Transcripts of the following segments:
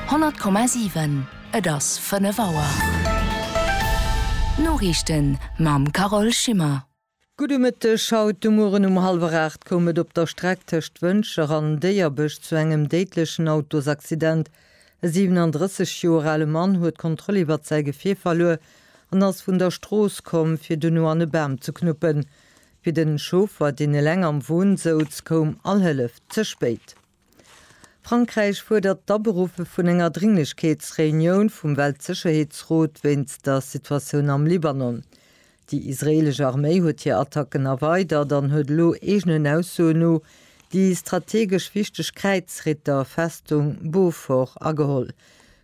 100,7 Et ass 5 Auer. D'Noriichten mam Carole Schimmer. Gudde Mëtteg. Haut de Mueren um hallwer 8 koum et op der Streck tëscht Wëntger an Déierbech zu engem déidlechen Autosaccident. E 37 Joer ale Mann huet d'Kontroll iwwert säi Gefier verluer an ass vun der Strooss komm, fir duerno an e Bam ze knuppen. Fir den Chauffer, deen eleng am Won souz, koum all Hëllef ze spéit. Frankräich fuerdert d'Aberuffe vun enger Dringlechkeetsreunioun vum Weltsécherheetsrot wéinst der Situatioun am Libanon. Déi israeelesch Arméi huet hir Attacken erweidert an huet elo eegenen Aussoen no déi strategesch wichteg Kräizritterfestung Beaufort ageholl.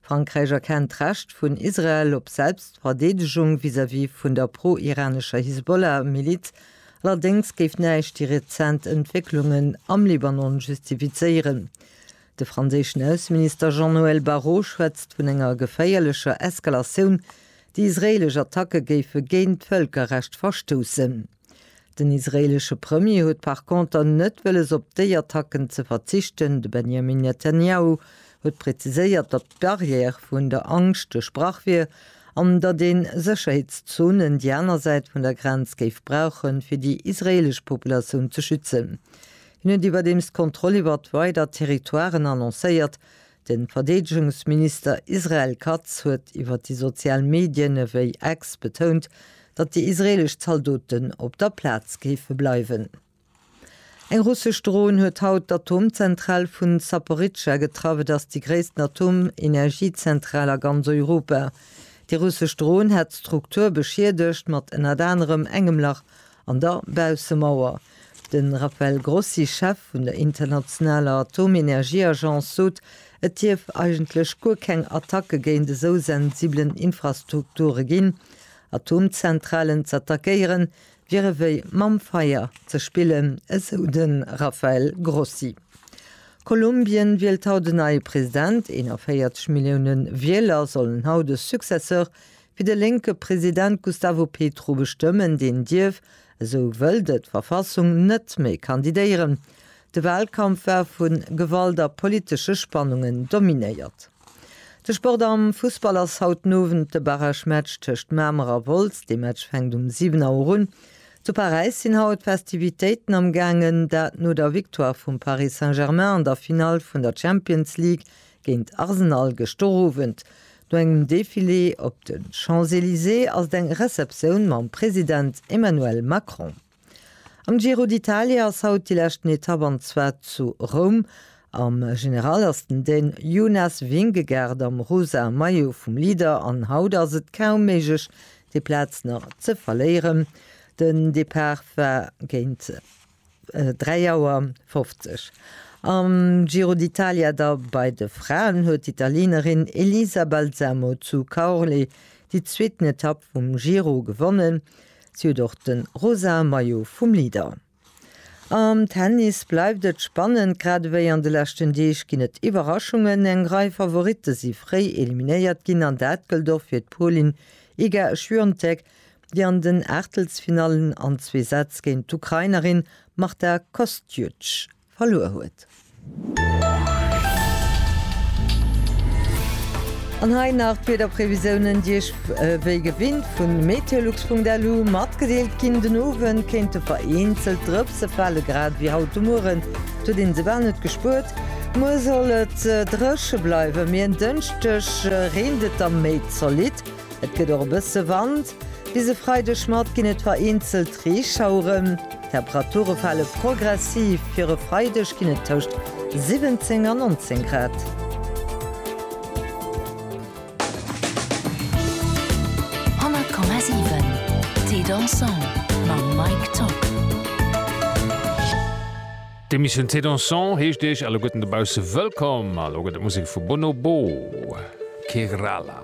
Frankräich erkennt d'Recht vun Israel op Selbstverdeedegung vis-à-vis vun der pro-iranescher Hisbollah-Miliz, allerdéngs géif näischt déi rezent Entwécklungen am Libanon justifizéieren. De franséischen Ausseminister Jean-Noël Barrot schwätzt vun enger geféierlecher Eskalatioun, déi israeelesch Attacke géife géint d'Vëlkerrecht verstoussen. Den israeelesche Premier huet par conter net wëlles op déi Attacken ze verzichten. De Benjamin Netanyahu huet präziséiert, datt d'Barrière vun der Angscht duerchbrach wier an datt ee Sécherheetszonen déi aner Säit vun der Grenz géif brauche fir déi israeelesch Populatioun ze schützen. Hien huet iwwerdeems d'Kontroll iwwert weider Territoiren annoncéiert, De Verdeedegungsminister Israel Katz huet iwwer déi sozial Medien ewéi X betount, datt déi israeelesch Zaldoten op der Plaz géife bleiwen. Eng russesch Dron huet haut d'Atomzentral vu Zaporizhzhia getraff. Et ass déi gréissten Atomenergiezentral a ganz Europa. Déi russesch Dron hat d'Struktur beschiedegt, mat ënnert anerem engem Lach An der Baussemauer. De Rafael Grossi, Chef vun der internationaler Atomenergieagence, sot, et dierf eigentlech guer keng Attacke géint esou sensibelen Infrastrukture ginn. Atomzentralen z'attackéieren, wier ewéi mam Feier ze spillen, esou de Rafael Grossi. Kolumbien wielt haut en neie President. 41 Millioune Wieler sollen haut e Successeur Fir de lénke President Gustavo Petro bestëmmen, deen dierf, esou wëllt et d'Verfassung, net méi kandidéieren. De Walkampf war vu Gewalt a politesche Spannungen dominéiert. De Sport am Fussball ass haut den Owend de Barragematch tëscht Mamer a Wolz. Dee Match fänkt um 7 Auer un. Zu Paräis sinn haut d'Festivitéiten amgaangen, dat no der Victoire vum Paris Saint-Germain an der Finall vun der Champions League Géint Arsenal gëschter Owend. No engem Defilé op de Champs-Elysées ass et eng Receptioun mam President Emmanuel Macron. Am Giro d'Italia ass haut déi leschten Etapp an zwar zu Roum. Am General ass den Dän Jonas Vingegaard am rosa Maillot vum Leader an haut ass et kaum méiglech déi Plaz nach ze verléieren. Den Depart war géint. 3 Auer 50 Am Giro d'Italia da bei de Fraen huet d'Italieenerin Elisa Balsamo zu Caorle déi zweeten Etapp vum Giro gewonnen. Si huet och de rosa Maillot vum Leader. Am Tennis bleift et spannend, grad ewéi an de leschten Deeg ginn et Iwwerraschungen. Eng Rei Favoritte si fréi eliminéiert ginn an dat gëllt och fir d'Polin Iga Swiatek déi an den Aachtelsfinallen an zwee Sätz géint d'Ukrainerin Marta Kostjuch verluer huet. An hei nach d'Wiederprevisiounen, déi Iech wéi gewinnt vu meteolux.lu matgedeelt ginn. Den Owend kéinte vereenzelt Drëpse fale, grad ewéi haut de Mueren, et huet een se bal net gespuert. Muer soll et dréche bleiwen, mee en Dënschdeg reent et da méi zolidd. Et gëtt och e bësse Wand. Bis e Freideg Matt ginn et vereenzelt Reeschaueren. D'Temperature fale progressiv, fir e Freideg ginn et tëscht 17 an 19 Grad. D'Emissioun Thé Dansant heescht Iech alleguerten dobausse wëllkomm. A lo gëtt et Musek vu Bonobo, Kerala.